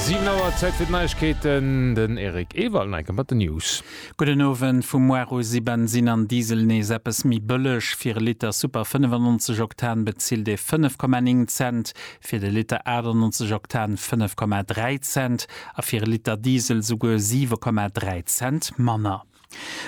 Siwen Auer, Zäit fir d'Neiegkeeten, den Eric Ewald enke mat den News. Gudden Owend, Vum Mois u si Bensin an Diesel nees eppes méi bëlleg. Fir e Liter Super 95 Oktan bezilt ee 5,9 Cent, fir de Liter 98 Oktan 5,3 Cent a fir e Liter Diesel souguer 7,3 Cent manner.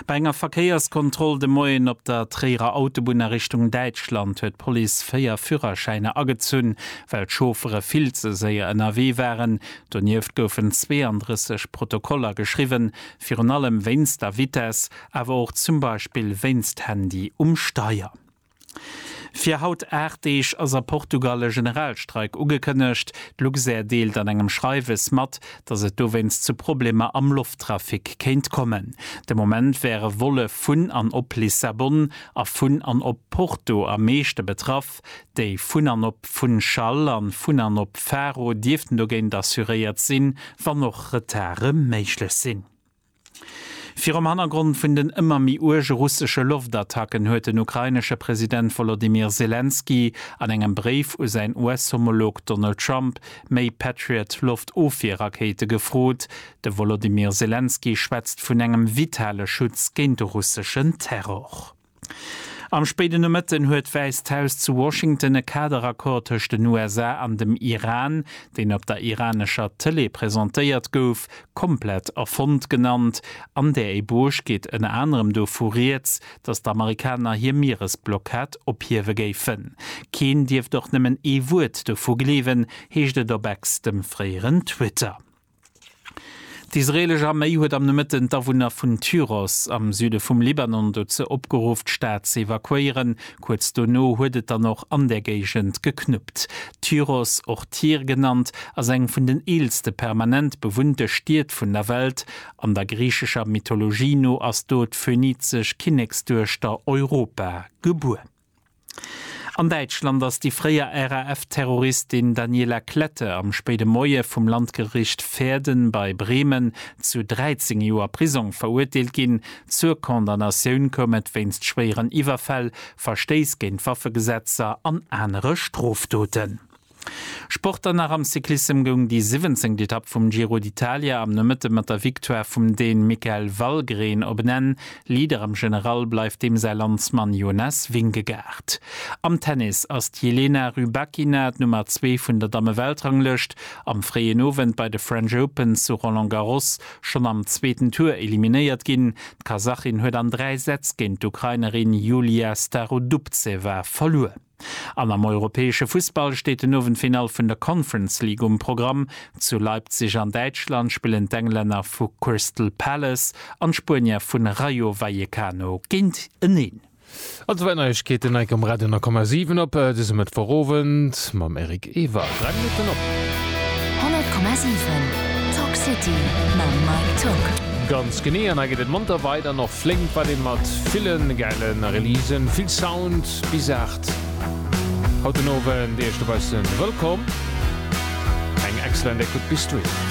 Bei enger Verkéierskontroll de Moien op der Tréierer Autobunn a Richtung Däitschland huet d'Police véier Führerschäiner agezunn, well d'Chauffere vill ze séier ënnerwee waren. Donieft goufen 32 Protokoller geschriwwen, virun allem wéinst der Vitess, awer och zum Beispill wéinst Handy um Steier. Fir haut 8 Deeg ass a Portugal e Generalstreik ugekënnegt. D'Luxair deelt an engem Schreiwes mat, datt et dowéinst zu Problemer am Lofttrafic kéint kommen. De Moment wäre Volle vun an op Lissabon a vun an op Porto am meeschte betraff. Déi vun an op Funchal a vun an op Faro dierften dogéint assuréiert sinn, wann och Retarde méiglech sinn. Virum Hannergrond vun den ëmmer méi uerge russesche Loftattacken huet den ukrainesche President Wolodymyr Selenskyj an engem Bréif u säin US-Homolog Donald Trump méi Patriot-Loftofwier-Rakéite gefrot. De Wolodymyr Selenskyj schwätzt vun engem vitale Schutz géint de russeschen Terror. Am spéiden Nomëtten huet d'Wäisst Haus zu Washington e Kaderaccord tëscht den USA an dem Iran, deen op der iranescher Tëlee presentéiert gouf, komplett erfonnt genannt. An där Ébauche geet ënner anerem dovu rieds, datt d'Amerikaner hir Mieresblockad ophiewe géifen. Keen dierft och nëmmen ee Wuert dovu gleewen, heescht et op Ex, dem fréieren Twitter. D'israelesch Arméi huet am Nomëtten d'Awunner vun Tyros am Süde vum Libanon dozou opgeruff, d'Stad ze evakuéieren. Kuerz dono huet et dann och an där Géigend geknuppt. Tyros, och Tyr genannt, ass eng vun den eelste permanent bewunnte Stied vun der Welt. An der griichescher Mythologie no ass do d'phönizesch Kinneksduechter Europa gebuer. An Däitschland ass déi fréier RAF-Terroristin Daniela Klette am spéide Moie vum Landgericht Verden bei Bremen zu 13 Joer Prisong verurteelt ginn. Zur Condamnatioun koum et wéinst schwéieren Iwwerfäll, Verstéiss géint Waffegesetzer an anere Strofdoten. Sport dann nach am Cyclissem goung déi siwwenzéngt Etapp vum Giro d'Italia am Nomëtte mat der Victoire vum Dän Mikael Valgren op en Enn. Leader am General bleift deem säi Landsmann Jonas Vingegaard. Am Tennis ass d'Jelena Rybakina d'Nummer zwee vun der Damme-Weltranglëscht am fréien Owend bei de French Open zu Roland Garros schonn am zweeten Tour eliminéiert ginn. D'Kasachin huet an dräi Sätz géint d'Ukrainerin Yulia Starodubtseva verluer. An am europäesche Fussball steet den Owend d'Finall vun der Conference League um Programm. Zu Leipzig an Däitschland spillen d'Englänner vu Crystal Palace an d'Spuenier vu Rayo Vallecano géint eneen. All zwou Neiegkeeten hei um Radio 10,7 op dësem Mëttwochowend mam Eric Ewald. Dräi Minutten op. 100,7 Talk City mam Mike Tock. Ganz genee, an hei geet et monter weider, an och flénk weider mat ville gäile Releasen, vill Sound. Bis 8 haut den Owend. Iech dobaussen wëllkomm. Eng excellent Ecoute bis dohin.